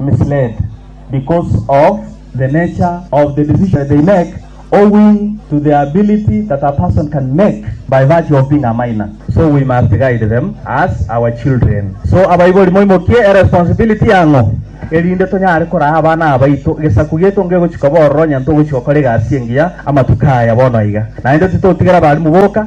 misled because of the nature of the decision they make owing to the ability that a person can make by virtue of being a minor so we must guide them as our children so abaibori moimokie eresponsibility yang'o erinde tonyare koraa abana abaito gesaku gieto ngegochi koba ororo onye ntogochi gokora egasi engiya amatuko aya bono aiga naende titotigera abalimu boka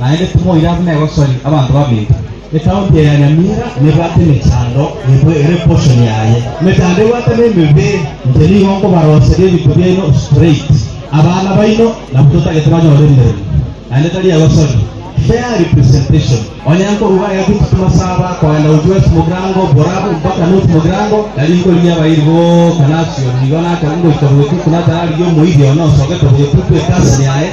Naende timoira buna egosori abanto babinto. Etaoni eye ya Nyamira nebwate emechando nigo ere portion yaye. Emechando ebwate nemebeere, inche nigo nkobaroseria ebinto biaino straight. Abana baino nabwo totagete banyore emeremo, naende tari egosori. Fair representation. Onye nkoruga egatutu kimasaba kogenda gochia West Mogrango, Borabu mpaka North Mogrango, tari nkorigia abairi boka nasio. Nigo nakoba ngoika Obogetutu natararigia omoiri one osogete Obogetutu, ekasi yaye.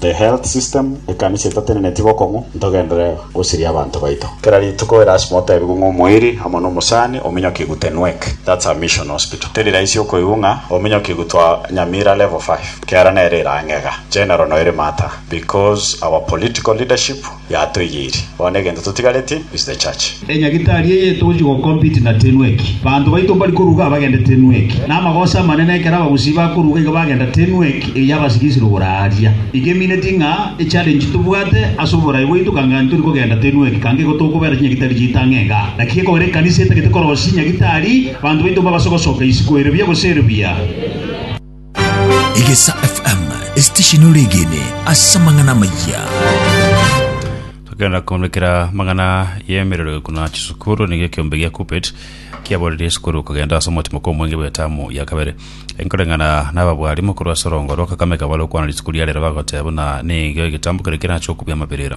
The health system, ekanisa etateneneti bokong'u, ntogendere gosiria abanto baito. Kera rituko erasima otebigwe ng'a omoiri amo na omosani ominyokigwe te Nwek. That's a mission hospital. Teri raisi okoigwa ng'a ominyokigwe twa Nyamira level five. Kiara nere ere ang'e iga. General noiri matter. Because our political leadership. Yatoigeiri. Bono egento totigareti is the church. Enyagitari eye togochia go compete na Tenwek. Banto baito mbari koruga abagende Tenwek. Namagoso amanene ekero abagusii bakoruga iga bagenda Tenwek eye yabasika ase rogoro aaria. Iga emineti ng'a echallenge tobwate ase oborai bwaito kang'ani tori kogenda Tenwek kanga igo tokobera chinyagitari chiaito ang'e iga. Naki gekogera ekanisa etagete korosia nyagitari, banto baito mbabaso gosoka isiko ere buya gose ere buya. Egesa FM, esitesheni ore egene ase amang'ana amayia. tokenda koonekera mang'ana yemerero kuna chisukuru niga ekiombe gia kupet kiaborerie esukuru kogenda ase omotimo kwa omwenge bw'etamu ya kabere enkoreng'ana n'ababwari mokuru ase orongoro kakamega bare okwana risiko ria rero bagoteba buna nigo egetambo kere kerache okubia amabirira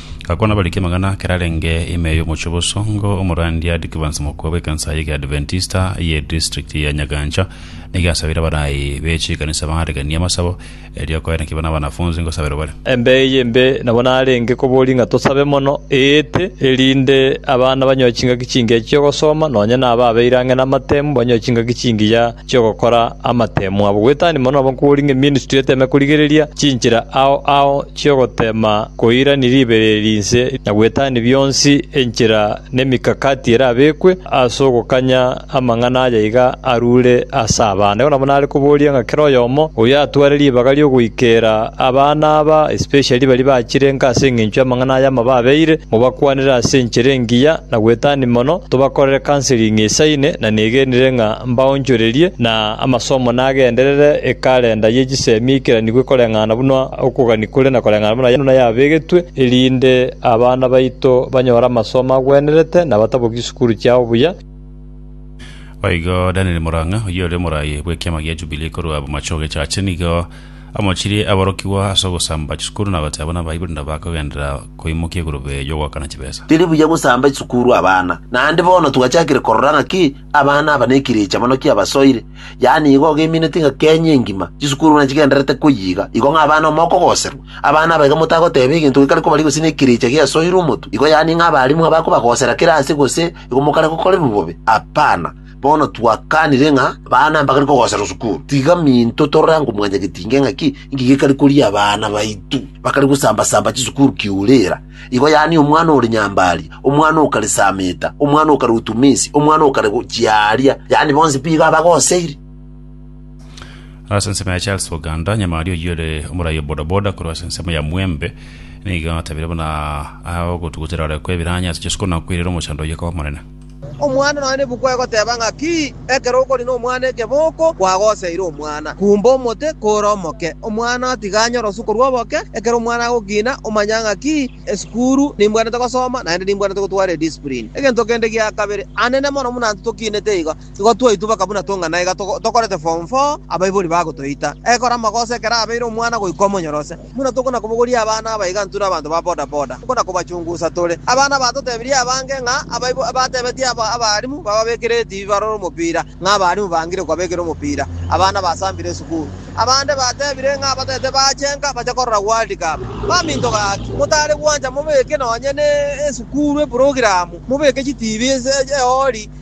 Gakwana abariki amang'ana ekero arenge ime y'omochie o Bosongo, omorandia Dickivans Mokua bw'ekansa ye Kiadventista ye district ya Nyagancha nigo asabire abaraai be chikanisa baareganie amasabo, erio akoe naki buna abanafunsi ngosaberwa bare. Embea eye embe nabo narenge koboria ng'a tosabe mono eete, erinde abana banyoe chingaki chingiya chi'ogosoma, nonya naba abeire ang'e namatemu banyoe chingaki chingiya, chi'ogokora amateemwa abo gwetania mono nabo nkori ng'a eministry eteeme korigereria chinchera ao ao chi'ogoteema koirania ribereri inse na gwetania bionsi enchera nemikakati erabekwe ase ogokanya amang'ana aya iga arure ase abana. Igo nabo nare koboria ng'a kera oyomo oyatware ribaga ri'ogoikeera abana aba especially baria bachirenka ase engencho y'amang'ana aya amababeire, mobakwanere ase enchera engiya na gwetania mono, tobakorere counseling esaine na negenire ng'a mbaonchorerie, na amasomo nagenderere ekalenda ye chisemi eikeranigwe koreng'ana buna okogania kore na koreng'ana buna yabegetwe, erinde abana baito banyore amasomo agwenerete na batabokie chisukuru chiao buya. Boigo Daniel Murang'a, oyio ore morai bw'ekiama gia Jubilee korwa bomache ogechache, nigo amochirie aborokigwa ase ogosamba chisukuru na goteba buna baibori nabo bakogenderera koimokia egurube y'ogoakana chibesa. Teri buya gosamba chisukuru abana, naende bono twachakire korora ng'aki Abana aba nekirecha mono ki'abasoire, yaani igo ogemineti ng'a Kenya engima chisukuru buna chigendererete koyiga, igo ng'a abana ime okogoserwa. Abana aba iga motagoteba egento gekare kobaria gose nekirecha giasoire omotu, igo yaani ng'a abalimu ng'a bakobagosera kera aase gose igo mokare gokorerwa bobe. Apana. Bono twakanire ng'a abana mbakare kogoserwa sukuru. Tiga minto torore ango mwanyagetinge ng'aki inki gekare koria abana baito bakare gosamba-samba chisukuru kiurera. Igo yaani omwana ore nyambari, omwana o kare Sameta, omwana o kare o Tumisi, omwana o kare gochia aaria, yaani bonsi mbigo abagoseire. Ase ensemo ya Charles Oganda, nyamari oyio ore omorai o bodaboda korwa ase ensemo ya Mwembe, nigo atabire buna aya ogotugutera ore kwebiranya ase chisuku na kwerera omochando oyio koba monene. Omwana nonya nebuku egoteba ng'a ki, ekero okori nomwana ekeboko kwagoseire omwana. Kumba omote kore omoke, omwana otiga anyore osuko rw'oboke. Ekero omwana agokina, omanya ng'a ki, esukuru nimbwanete gosoma, naende nimbwanete gotwara ediscipline. Egento kende gia kabere, anene mono buna intwe tokinete igo, igo twaitubeka buna tong'ana iga tokorete form four abaibori bagotoita. Ekero amagoso ekero abeire omwana goika omonyorose. Buna tokona kobogoria abana abaigantu na abanto ba boda boda, tokona kobachungusa tore. Abana batotebirie abange ng'a abaibo batebetie abarimu bababekere etibi barore omopira, ng'a abarimu bangire kobabekera omopira abana basambire esukuru. Abande batebire ng'a abatete bachenka bache korora World Cup. Baminto gaki, motare gwancha mobeke nonye ne esukuru eprogiramu, mobeke chitibi ase eori.